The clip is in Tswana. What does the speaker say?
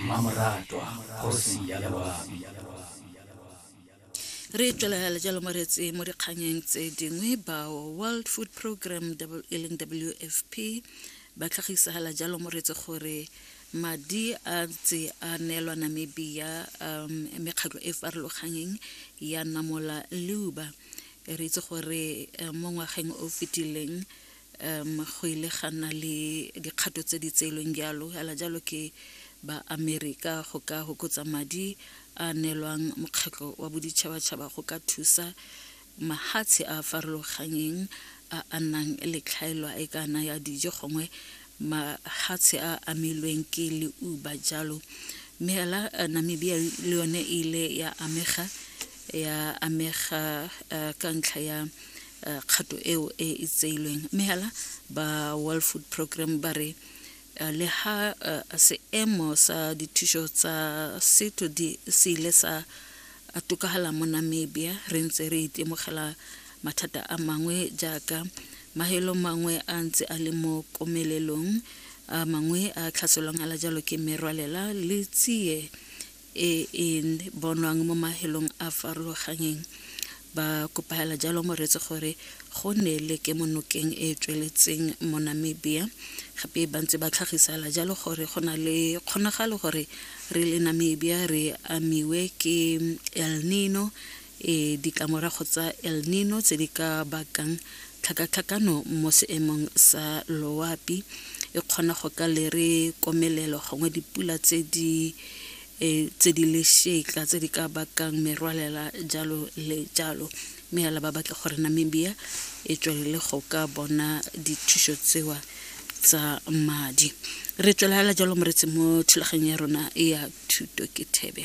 Mmamoratwa kgosi ya loabi. re tswelela le jalo moretse mo dikganyeng tse dingwe bao world food program e leng wfp ba tlhagisagala jalo moretse gore madi a tse a neelwa namibia um mekgatlho e farologanyeng ya namola leuba re itse gore eh, mo ngwageng o fetileng um go ile ga nna le dikgato tse di tseelweng jalo fela jalo ke ba amerika go ka hokotsa madi a neelwang mokgatlho wa boditšhabatšhaba go ka thusa mahatshe a a farologanyeng a a nnang le tlhaelwa e kana ya dijo gongwe mahatshe a amilweng ke leuba jalo mme fela eh, namibia le yone e ile ya amega ya amega eh, ka ntlha ya uh, kgato eo e e tseilweng mme hela ba world food program ba re uh, le ha uh, seemo sa dithuso tsa setho di se ile sa a tokagala mo namibia re ntse re itemogela mathata a mangwe jaaka mahelo mangwe a ntse a le mo komelelong a mangwe a tlhaselwang ala jalo ke merwalela le tsie e e bonwang mo mahelong a farologanyeng, ba kopaela jalo Moretsi gore go nne le kemonokeng e e tsweletseng mo Namibia. Gape ba ntse ba tlhagisela jalo gore go na le kgonagalo gore re le Namibia re amiwe ke El Nino e ditlamorago tsa El Nino tse di ka bakang tlhakatlhakano mo seemong sa loapi e kgona go ka lere komelelo gongwe dipula tse di e, tse di lešetla tse di ka bakang merwalela jalo le jalo mme ya laba batle gore Namibia e tswelele go ka bona dithuso tsewa tsa madi re tswelagala jalo moretsi mo thulaganyong ya rona ya thuto ke thebe